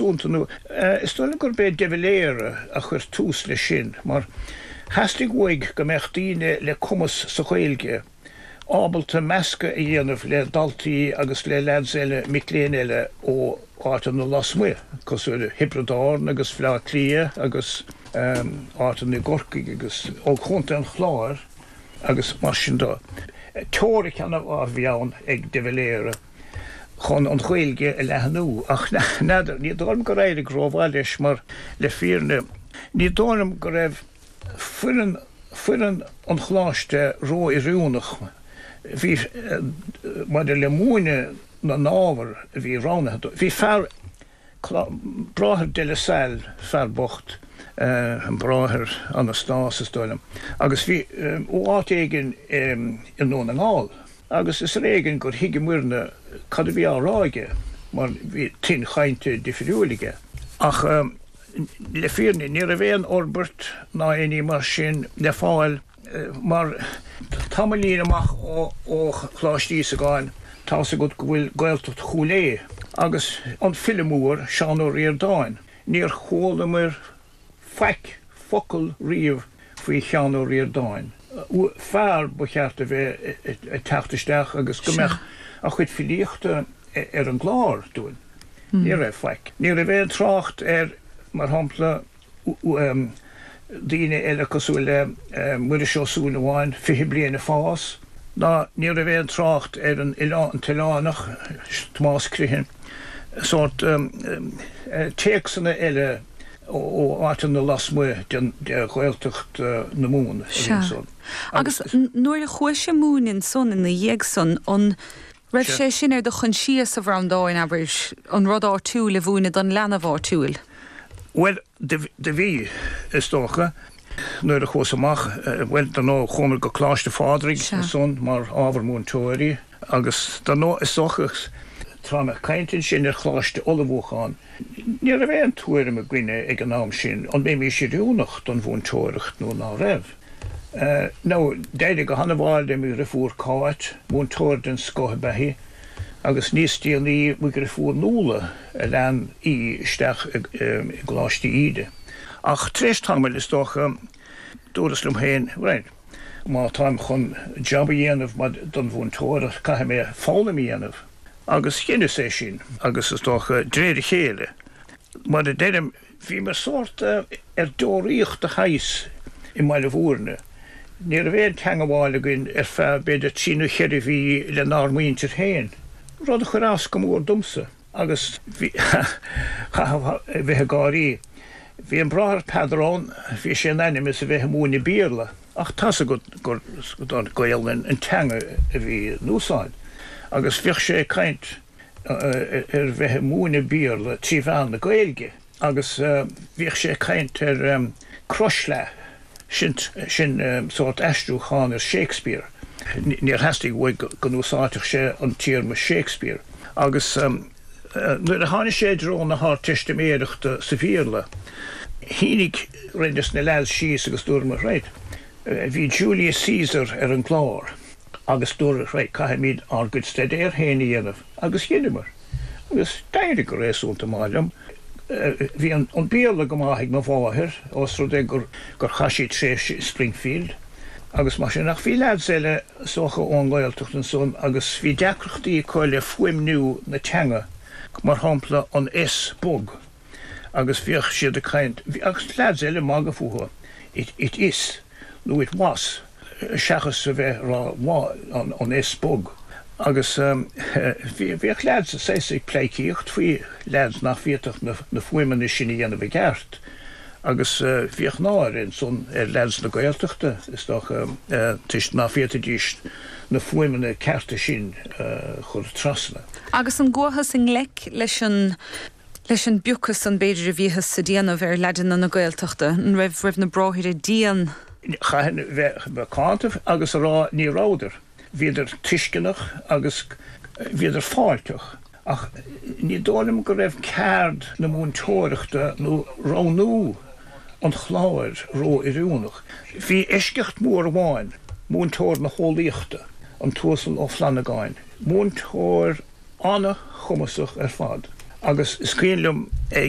dúnta nó. Is dóigh liom gurb é De Valera a chuir tús leis sin, mar theastaigh uaidh go mbeadh daoine le cumas sa Ghaeilge ábalta meascadh a dhéanamh le daltaí agus le leaids eile, mic léinn eile ó áiteanna lasmuigh, cosúil le Thiobraid Árann agus Bhaile Átha Cliath agus áiteanna i gCorcaigh agus ó Chontae an Chláir agus mar sin de. Teoiric ana mhaith a bhí ann ag De Valera. chun an Ghaeilge a leathnú. Ach n'fheadar, ní dóigh liom gur éirigh rómhaith leis mar, le fírinne, ní dóigh liom go raibh foireann foireann an Choláiste ró-oiriúnach maidir le múineadh na n-ábhar a bhí roghnaithe dóibh. Bhí fear. Bráthair De La Salle, fear bocht, an Bráthair Anastás, is dóigh liom, agus bhí sé ó áit éigin i nDún na nGall, agus is ar éigin gur thuigeamairne cad a bhí á rá aige, mar bhí tuin chainte difiriúil aige. Ach le fírinne, ní raibh aon fhorbairt ná aon ní mar sin le fáil. Mar tamaillín amach ó Choláiste Íosagáin, tá's agat go bhfuil Gaeltacht Chúil Aodha, agus an file mór, Seán Ó Ríordáin. Níor chualamair faic, focal, riamh faoi Sheán Ó Ríordáin, fear ba cheart a bheith ag teacht isteach agus go mbeadh a chuid filíochta ar an gclár dúinn. Ní raibh faic. Ní raibh aon trácht air, mar shampla, daoine eile cosúil le Muiris Ó Súilleabháin, Fiche Bliain ag Fás, ná ní raibh aon trácht ar an an tOileánach, Tomás Criomhthain, sórt téacsanna eile ó áiteanna lasmuigh de Ghaeltacht na Mumhan a bhí ansan. Agus nuair a chuais ag múineadh ansan ina dhiaidh san, an. raibh sé sin ar do choinsias, a Bhreandáin, abair, an rud áitiúil a mhúineadh don leanbh áitiúil? Bhuel, do bhí, is dócha. Nuair a chuas amach, bhuel, dar ndóigh, chuamar go Coláiste Phádraig ansan mar ábhar múinteoirí agus dar ndóigh, is dócha, táim ag caint ansin ar Choláiste Ullmhúcháin, ní raibh aon tuairim againne ag an am sin an mbeimís oiriúnach don mhúinteoireacht nó ná beimís. Nó d'éirigh go hana-mhaith le mo dhriofúr Cáit, múinteoir den scoth ab ea í, agus níos déanaí mo dhriofúr Nuala a lean í isteach i gColáiste Íde. Ach tar éis tamaill, is dócha, dúras liom féin, bhuel, má táim chun jab a dhéanamh maidir le múinteoireacht, caithfidh mé foghlaim a dhéanamh. Agus dheineas é sin, agus is dócha, d'réir a chéile, mar a deirim, Bhí mé sórt ar deoraíocht de shaghas i mBaile Bhúirne. Ní raibh aon teangabháil againn ar feadh b'fhéidir trí nó cheithre mhí le n-ár muintir féin, rud a chuir as go mór domsa agus bhíteá a bheith ag gáirí. Bhí an Bráthair Peadar ann, bhí sé in ainm is a bheith ag múineadh Béarla ach tá's agat Gaolainn an teanga a bhí in úsáid agus bhíodh sé ag caint, ar bheith ag múineadh Béarla trí mheán na Gaeilge agus bhíodh sé ag caint ar 'Crothshleá' sin sórt aistriúchán ar Shakespeare, níor theastaigh uaidh go n-úsáidfeadh sé an téarma 'Shakespeare' agus nuair a tháinig sé i dtreo na hArdteistiméireachta sa Bhéarla, shuigh roinnt de na leaids síos agus dúramar, 'Right, bhí Julius Caesar ar an gclár. agus dúradh, Right, caithfimid ár gcuid staidéir féin a dhéanamh, agus dheineamar, agus d'éirigh go réasúnta maith liom. Bhí an Béarla go maith ag mo mháthair, os rud é gur chaith sí tréimhse i Springfield agus mar sin, ach bhí leaids eile, 's dócha ón nGaeltacht ansan, agus bhí deacrachtaí acu le fuaimniú na teanga, mar shampla an S bog, agus bhíodh siad ag caint, agus leaids eile ag magadh fúthu, it is. nó it was, seachas a bheith ag rá an S bog. Agus bhíodh leaids is ea ag pleidhcíocht faoi leaids nach bhféadfadh na fuaimeanna sin a dhéanamh i gceart, agus bhíodh náire ansan ar leaids na Gaeltachta, is dócha, toisc nach bhféadfaidís na fuaimeanna cearta sin a chur trasna. Agus an gcuathas i ngleic leis an. Leis an bpiocadh san b'fhéidir a bhíothas á dhéanamh ar leaideanna na Gaeltachta, an raibh na bráithre dian? Chaithfinn bheith macánta agus a rá ní rabhadar. Bhíodar tuisceanach agus bhíodar fáilteach. Ach ní dóigh liom go raibh ceard na múinteoireachta nó roghnú an ábhair ró-oiriúnach. Bhí eisceacht mór amháin, múinteoir na heolaíochta, an tUasal Ó Flannagáin. Múinteoir an-chumasach ar fad agus is cuimhin liom ag